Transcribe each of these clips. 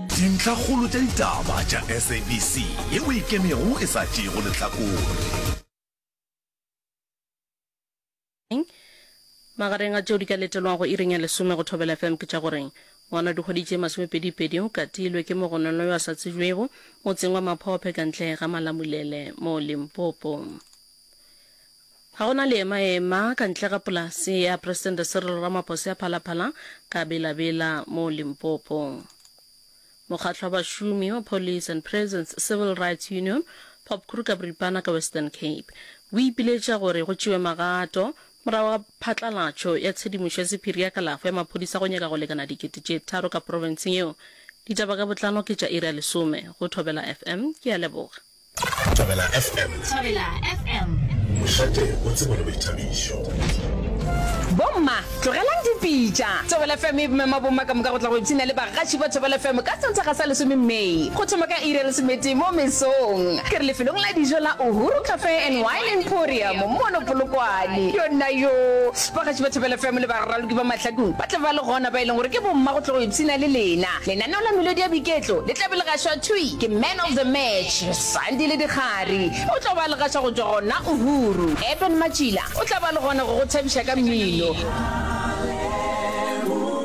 Dintlhakgolo tša ditaba tša SABC yeo e ikemego e sa tšeego lehlakore. Magareng a tšeo di ka letelwago iring ya lesome go Thobela FM ke tša gore, Ngwana wa dikgwedi tše masomepedipedi o katilwe ke mogononwa yo a sa tsebjwego motseng wa Maphophe ka ntle ga Malamulele mo Limpopo. Ga go na leema-ema ka ntle ga polase ya Presidente Cyril Ramaphosa ya Phala-Phala ka Bela-Bela mo Limpopo. Mokgatlo wa bašomi wa Police and Prisons Civil Rights Union, POPCRU ka boripana ka Western Cape, o ipiletša gore go tšewe magato morago ga phatlalatšo ya tshedimošo ya sephiri ya kalafo ya maphodisa go nyaka go lekana dikete tše tharo ka profenseng yeo. Ditaba ka botlano ke tša iri ya lesome go Thobela FM. Ke a leboga. Thobela FM. Thobela FM. Mošate o tsebo le boithabišo. Bomma, tlogelang dipitša. Thobela FM e mema bomma ka moka go tla go ipshina le bagatši ba Thobela FM ka Sontaga sa lesome May. Go thoma ka iri ya lesometee mo mesong. Ke re lefelong la dijo la Uhuru Cafe and Wine Emporium mono Polokwane. Yona yo, bagatši ba Thobela FM le baraloki ba mahlakong ba tla ba le gona ba e leng gore ke bomma go tla go ipshina le lena. Lenaneo la melodi ya boiketlo le tla be le gašwa thwi ke Man of the Match, Sandi le Dikgari. O tla ba a le gaša go tšwa gona Uhuru. Eben Matšila o tla ba a le gona go go thabiša ka mmino.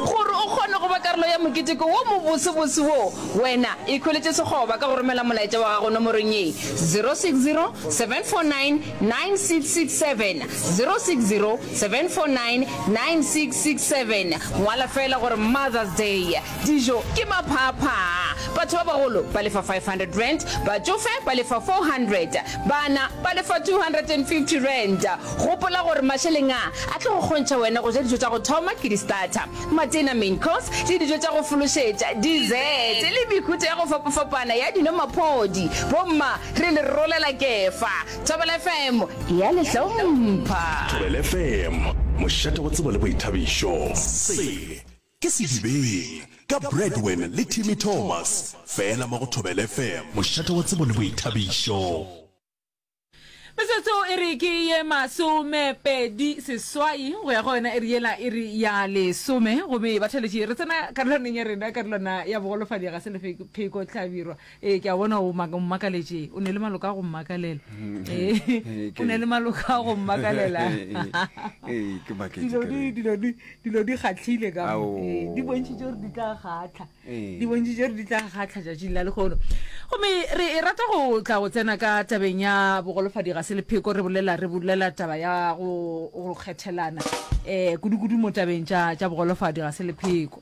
Gore o kgone go ba karolo ya moketeko wo mobosebose wo, wena ikhweletše sekgoba ka go romela molaetša wa gago nomorong ye, 060 749 9667 060 749 9667 Ngwala feela gore Mother's Day. Dijo ke maphaaphaa. Batho ba bagolo ba lefa R500, batšofe ba lefa R400, bana ba lefa R250. Gopola gore mašeleng a a tlo go kgontšha wena go ja dijo tša go thoma ke di-starter, matena, main course, le dijo tša go fološetša, dessert, le mehuta ya go fapafapana ya dino, maphodi, bomma, Re le rolela Kefa. Thobela FM e a le hlompha. Thobela FM, mošate wa tsebo le boithabišo. Se ke Sedibeng ka Bradwin le Timmy Thomas, fela mo go Thobela FM, mošate wa tsebo le boithabišo. Metsotso e re ke ye masomepedi seswai go ya go yona e re yela e re ya lesome gomme ba theletše re tsena karolwaneng ya rena karolwana ya bogolofadi ga se lepheko tlhabirwa Ee, ke a bona o maka- o mmakaletše. O ne le maloko a go mmakalela. Ee, Ee, ke- o ne le maloko a go mmakalela. Ee, ke maketše Dilo ke di- re. dilo di- dilo di kgatlhile ka mo. Ao. Ee, di bontšhitše gore di tla kgatlha Ee. di bontšhitše gore di tla kgatlha tšatšing la lekgono gomme re e rata go tla go tsena ka tabeng ya bogolofadi ga se lepheko re bolela re bolela taba ya go go kgethelana um kudu-kudu mo tabeng tša tša bogolofadi ga se lepheko